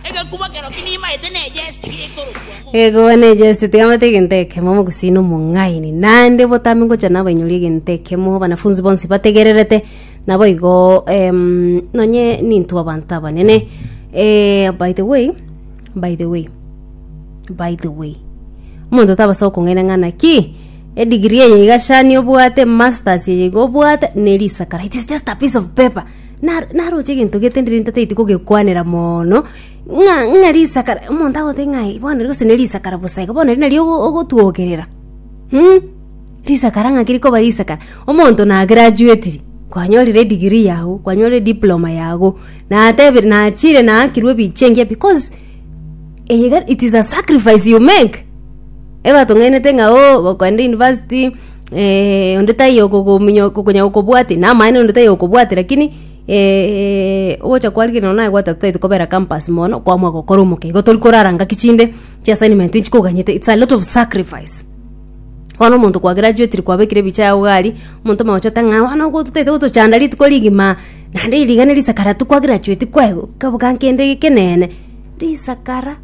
Egekuba kero ki nimaete ne ejesti gekorokwa mo. Egoba ne jest tigamate egento ekemo mogusina omong'aini naende botambe ngocha nabainyori egento ekemo banafunzi bonsi bategererete nabo igo em, nonye nintwe abanto abanene eh, by the way by the way by the way omonto tabasa gokong'aina ng'a naki edigiri eye iga shani obwate masters eye iga obwate ne risakara it is just a piece of paper Na- naroche egento getenderiri ntatagete kogekwanera moono, ng'a ng'a risaka ra- omonto agotebi ng'a aye bono gose ne risaka ra bosa iga bono eri nario ogo- ogotwokerera mh, risakara ng'aki rikoba risakara omonto na graduatiri, kwanyorire edegree yago, kwanyorire ediploma yago, natebire nachire naakirwe ebiche engiya because eye iga it is a sacrifice you make, ebatong'ainete ng'a oo, gokenda university. eh, onde taiyo okogomunya- okonya gokobwati na amaene onde taiyo okobwati lakini eh, ogocha kwarigia nonye naye gwateba totaete kobera campus mono kwamua gokora omokia igo tori korara ngaki chinde chia assignment nchikoganyete its a lot of sacrifice bono omonto kwa graduatire kwabekire ebicha yago iga aria omonto omogocha ote ng'a bono ogo totaete gotochanda rituko rigima naende iri rigena risakara tokwagerachueti kwaye kaboka nkende ekeneene risakara.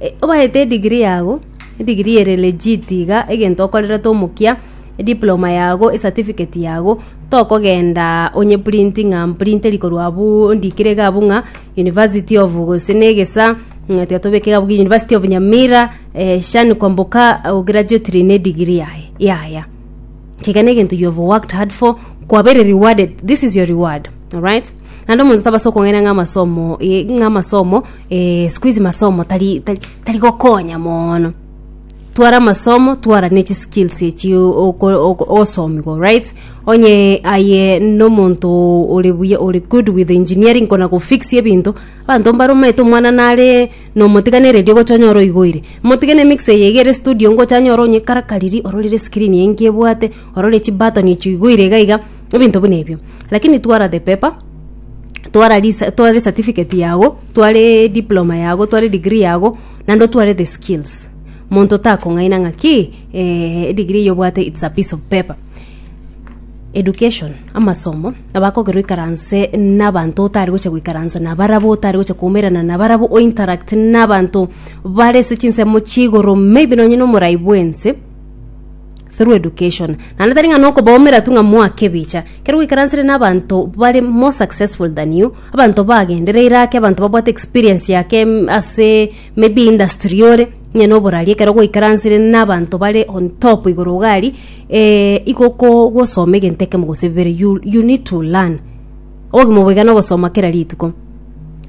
E- obaete edigiri yago edigiri ere legit iga egento okorerete omokia ediploma yago esatifiketi yago tokogenda onye printing ng'a mprintere korwa abuu ndikire iga abwo ng'a university of gose na egesa ng'a tiga tobeke iga abwo university of nyamira eh, shani kwamboka ograduatire na edigiri yaye yaya kega negento you have worked hard for kwabere rewarded this is your reward alright naende omonto tabasa okong'aina ng'a amasomo eh, ng'a amasomo eh, siku hizi masomo tari tari tari gokonya mono twara amasomo twara ne chiskills echi ogosomiwa right onye aye nomonto ore buya ore good with engineering kona gofix ebinto abanto mbaromanyete omwana nare Nomotiganererie gochonyora oigoire. Motige ne mixer eye egere studio ngochanyore onye karakariri ororire escreen eye nki ebwate orore chi button echi oigoire iga iga ebinto buna ebio. Lakini twara the paper twara risa tware certificate yago tware diploma yago tware degree yago naende otware the skills monto takong'aina ng'aki eeh edegree eye obwate it's a piece of paper. education, amasomo, abakogerwa oikaranse n'abanto otari gocha goikaransa nabarabwo, otari gocha koumerana nabarabwo, o interact n'abanto bare ase chinsemo chiigoro maybe nonye na omorai bw'ense through education. Naende tari ng'a nokobaumera tu ng'a mwake ebicha, ekero gwaikaransire n'abanto bare more successful than you, abanto bagendereire ake, abanto babwate experience ya ake mm ase maybe industry ore, onye na oborari ekero gwaikaransire n'abanto bare on top igoro iga aria. Eh, iko ko gosoma egento ekemo gose bibere you, you need to learn obogima boigana ogosoma kera rituko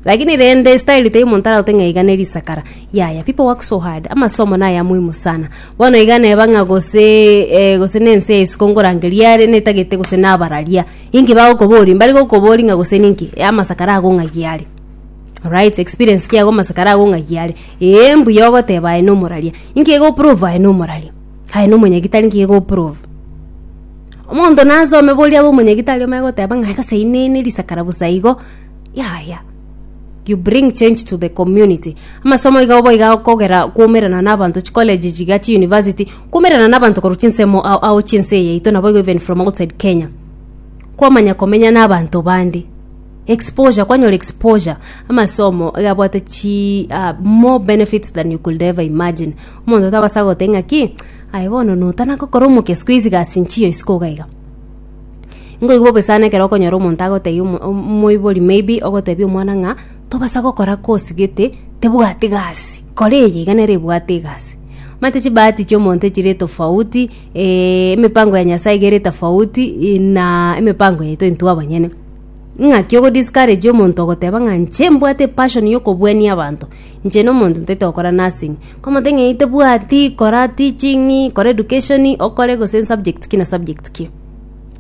lakini rende style tei omonto aragote ng'a iga neri isakara yaya people work so hard amasomo naya muhimu sana bono iga neba ng'a gose eh, gose nense yaisiko ngorangeria are netagete gose nabararia inki bagokobori mbari gokobori ng'a gose ninki eh, amasakara agong'agia are Alright, experience kiago amasakara agong'agia are ee mbuya ogoteba aye nomoraria inki egoprove aye nomoraria Aye nomonyagitari nki gegoprove? Omonto nasome boria abe omonyagitari omanye goteba ng'a gose inene risakara bosa igo. Yaya. You bring change to the community. Amasomo iga obo iga kogera kwaumerana na abanto chicollege chiga chiuniversity, kwaumerana na abanto korwa chinsemo ao ao chinse eye yaito naboigo even from outside Kenya. Kwamanya komenya na abanto bande. Exposure, kwanyora exposure. Amasomo iga abwate chi ah more benefits than you could ever imagine. Omonto tabasa goteba ng'aki, aye bono notana gokora omokia isiko isi gasi nchiyo isiko iga iga. Nkoigwa bobe sana ekero okonyora omonto agotebia omo- om- omoibori maybe ogotebia omwana ng'a tobasa gokora kosi gete tebwati gasi, kora eye iga nere ebwate egasi. Omanyete chibahati chia omonto chire tofauti emepango ya Nyasaye iga ere tofauti ii na emepango yaito intwe abanyene. Ing'aki ogo discourage omonto ogoteba ng'a nche mbwate passion yokobuania abanto, nche na omonto ntaete gokora nursing. Komotebia ng'a eyi tebwati, kora teaching, kora education, okore gose subject ki na subject ki.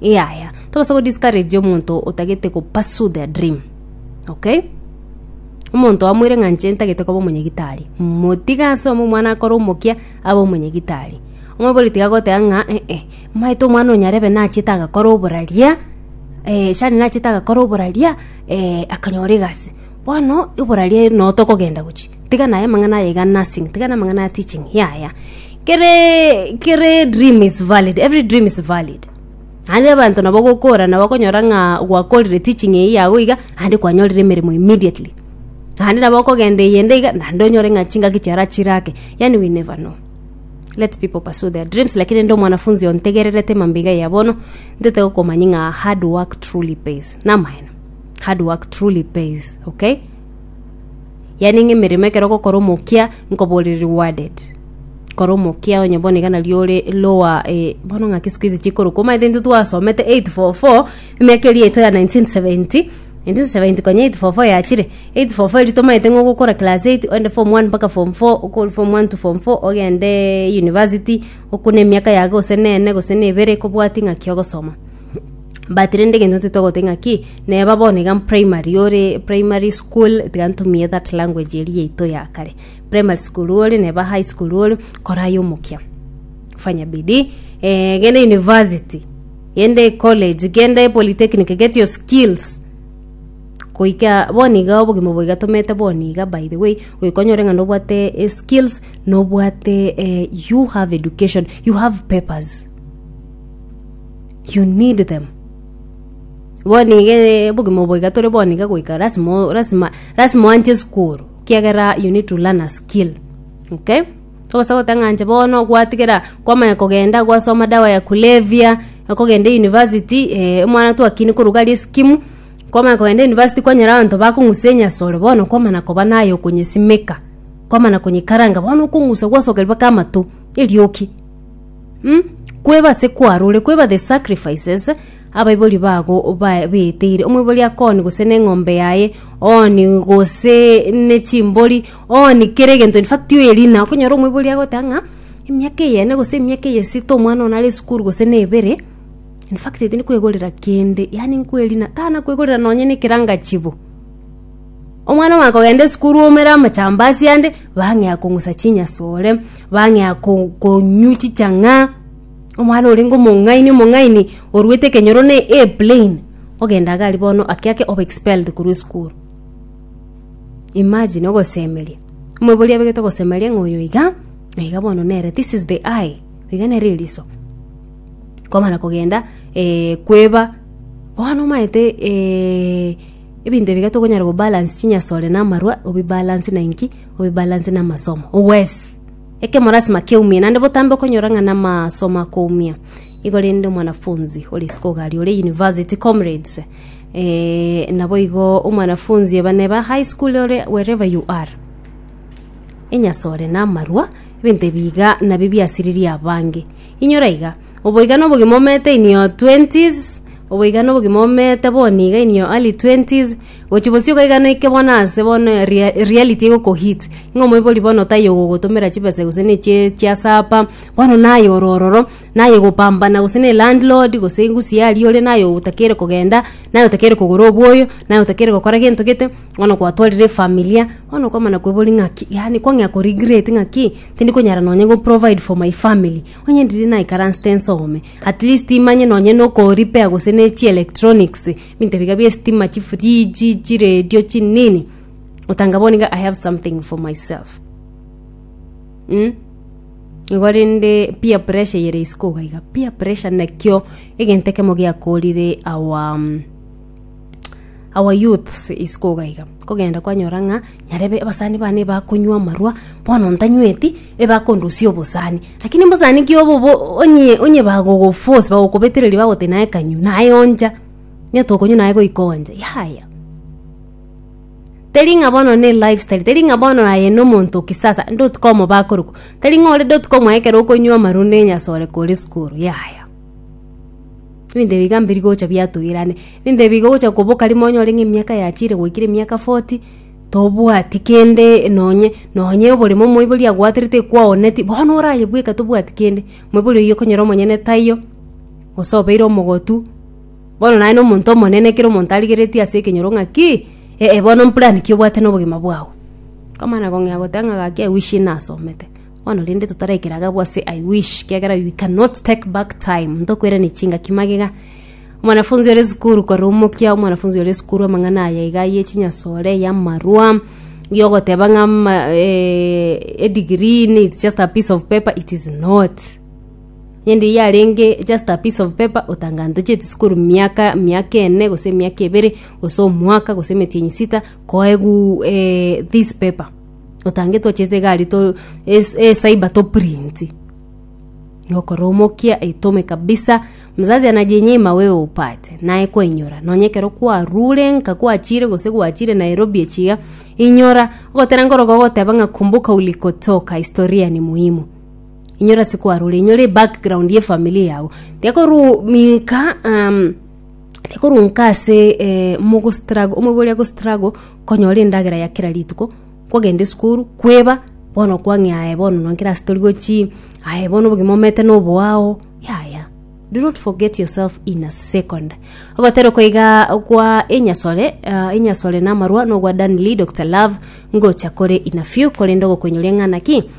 Yaya, tobasa go discourage omonto otagete go pursue their dream, okay? Omonto oamweire ng'a nche ntagete koba omonyagitari, motige asome omwana akore omokia abe omonyagitari. Omobori tiga goteba ng'a eh eh. Omanyete omwana o nyarebe nachete agakora oboraria, eh, Shani nachete agakora oboraria, eh, akanyora egasi. Bono oboraria noo tokogenda gochia, tiga naye amang'ana aye iga nursing, tiga na amang'ana ya teaching, yaya. Keree kere dream is valid, every dream is valid. Naende abanto nabo gokora nabo okonyora ng'a gwakorire teaching eye yago iga, naende kwanyorire emeremo immediately. Naende nabo okogenda eyende iga, naende onyore ng'a chingaki chiara chirake, yaani we never know. let people pursue their dreams lakini ndi omwanafunzi ontegererete mambiga ya bono ntete gokomanya ng'a hard work truly pays namaene hard work truly pays okay yani ng'a emeremo ekero gokora omokia nkoborire rewarded kora omokia onye bono iga nario ore lower eh, bono ng'aki siku hizi chikorokwa omaete intwe twasomete 844 emiaka eria yaito ya 1970 1978 form four yachire, 8 form four erio tomaete ng'a ogokora class eight oende form one mpaka form four, okori form one to form four ogende university, okwo na emiaka yago gose na ene gose na ebere kobwati ng'aki ogosoma. But rende egento ntete ogoteba ng'aki, neba bono iga primary ore primary school tiga ntumie that language eria yaito ya kare, primary school ore neba high school ore, kora aye omokia, fanya bidii, genda university, Genda ecollege, genda epolitechnic, get your skills. Goika boni iga obogima obo igatomete boni iga by the way, goika onyore ng'a nobwate eh, skills, nobwate eh, you have education, you have papers. You need them. Boni iga eh, obogima obo iga tore boni iga goika lasima o- lasima lasima oanche esukuru, ekiagera you need to learn a skill, okay? Tobasa goteba ng'a inche bono gwatigera kwamanya kogenda gwasoma dawa ya kulevya, okogenda university eh, omwana twakina korwa iga riskimu, kwamanya kogenda university kwanyora abanto bakong'usa enyasore bono kwamana koba naye okonyesimeka, kwamana konyekaranga bono okong'usa gwasoka mpaka amato, erioki mh, kweba ase kwarure kweba the sacrifices abaibori bago bae baeteire, omoibori akoonie gose neng'ombe yaye ooni gose nechimbori. Oo ni kere egento in fact tiyo eri ina okonyora omoibori agoteba ng'a emiaka eye ene gose emiaka eye esito omwana one are esukuru gose na ebere in fact tindi kwegorera kende yaani nkwerina tana kwegorera nonye na ekeranga chibo omwana omanye kogenda esukuru omere amachambasi ande bang'ea kong'usa chinyasore bang'ea ko konywa chichang'a omwana orenge omong'aini omong'aini orwete ekenyoro na A plain ogenda iga aria bono ake ake obe expelled korwa esukuru. Imagine ogosemeria. Omobori abegete ogosemeria ng'a oyo iga, na iga bono nere this is the eye, iga nere eriso. Kwamana kogenda eh, kweba, bono omanyete eh, ebinto ebiga tokonyara kobalance chinyasore na amarwa, obibalance na inki? Obibalance na amasomo. Owes! Ekemo lasima keumie, naende botambe okonyora ng'a na amasomo akoumia. Igo rende omwanafunzi ore isiko iga aria ore university comrades, Eh, naboigo omwanafunzi bane ba high school ore wherever you are enyase ore namarwa ebinto ebiga nabio biasiririe abange inyora iga oboiga na obogima omete in your 20s oboiga na obogima omete bono iga in your early 20s gochi bosio iga iga noike bono ase bono ria reality egoko hit ng'a omoibori bono taiyo ogogotomera chibesa gose ne chie chia sapa bono naye oro ororo. naye gopambana gose ne landlord gose engusi yaye aria ore naye otakeire kogenda naye otakeire kogora oboyo naye otakeire gokora gento gete bono gwatwarire efamilia bono okomana koiboria ng'aki yaani kwang'ea ko regret ng'aki tindi konyara nonye go provide for my family onye riria naikaransete nsome at least manye nonye no ko repair gose ne chi electronics ebinto biga bie estima chifridge chiredio chi nini otanga bono iga i have something for myself mh. Igo rende peer pressure eyere isiko iga iga. Peer pressure nakio egento ekemo giakorire our mm, our youths isiko iga iga. Kogenda kwanyora ng'a nyarebe abasani bane bakonywa amarwa, bono ntanyweti, ebakondusia obosani. Lakini mbosani ki obo obo onye onye bagogoforce bagokobetereria bagoteba naye kanywa, naye oncha. Onye tokonywa naye goika oncha, yaya. Teri ng'a bono ne lifestyle, teri ng'a bono aye nomonto o kisasa, ndotuka omobaa korokwa. Teri ng'a ore ndotuka omobaa ekero okonywa amaru na enyasore kore sukuru, yaya. Ebinto ebi iga mbiri gocha biatogirane, ebinto ebi iga ogocha koboka rimo onyore ng'a emiaka yachire goikire emiaka forty, tobwati kende nonye nonye oboremo omoibori agwaterete ekwaoneti, bono orayebweka tobwati kende. Moibori oyio okonyora omonyene taiyo, gose obeire omogotu. Bono naye nomonto omonene ekero omonto arigeretie ase ekenyoro ng'a ki, ee, bono mplan ki obwate nobogima bwao? Nkomana kong'ea goteba ng'a gaki I wish nasomete. Bono rende totaraikera iga abwo ase I wish, ekiagera we cannot take back time, ntokwerania chingaki magega. Omwanafunzi ore esukuru korumokia omwanafunzi ore esukuru amang'ana aya iga ya echinyasore, ya amarwa, ya ogoteba ng'a edegree needs just a piece of paper, it is not. Rende eyio yarenge just a piece of paper otangantocheti sukuru miaka miaka ene gose miaka ebere gose omwaka gose emetienyi sita koegu eh this paper otange twachete egari to es ecyber to print nokora omokia etome kabisa mzazi anajinyima wewe upate naye kwainyora nonye ekero kwarure nka kwachire gose gwachire Nairobi echi iga inyora ogotera nkoroka ogoteba ng'a kumbuka ulikotoka historia ni muhimu. inyora ase kwarure inyore ebackground ye family yago tekoru minka um, tekoru nka ase eh, mogo struggle omoibo oria go struggle konyora endagera ya kera rituko kogenda esukuru kweba bono kwang'ea aye bono nonkere ase tori gochi aye bono obogima omete noboao yaya do not forget yourself in a second ogotera koiga kwa enyasore uh, enyasore na amarwa nogwa danley dr love ngocha kore in a few korende ogokoinyora eng'ana ki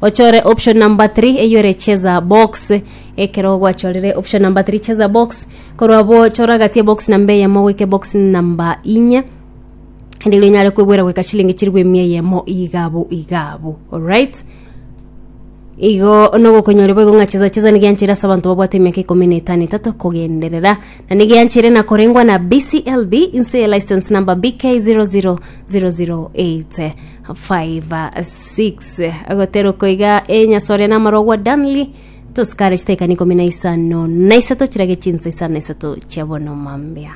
Ochore option number 3 eyore cheza box ekero gwachorire option number 3 cheza box korwa abwo chora gati ebox namba eyemo goika ebox namba inye ende ero inyare kwegwera goika chilingi chirigwe emia eyemo igabu igabu alright igo nogokonyoria boigo ng'a cheza cheza nigo yancheire ase abanto babwate emiaka ikomi na etano etato kogenderera na nigo yancheire na korengwa na bclb inse eye license number bk 00008 5, 6 agotera okoiga enyasa oria namarogwa danli tosikare chitaikani ikomi na isano na isato chirage chinsa isano na isato chia bono mambia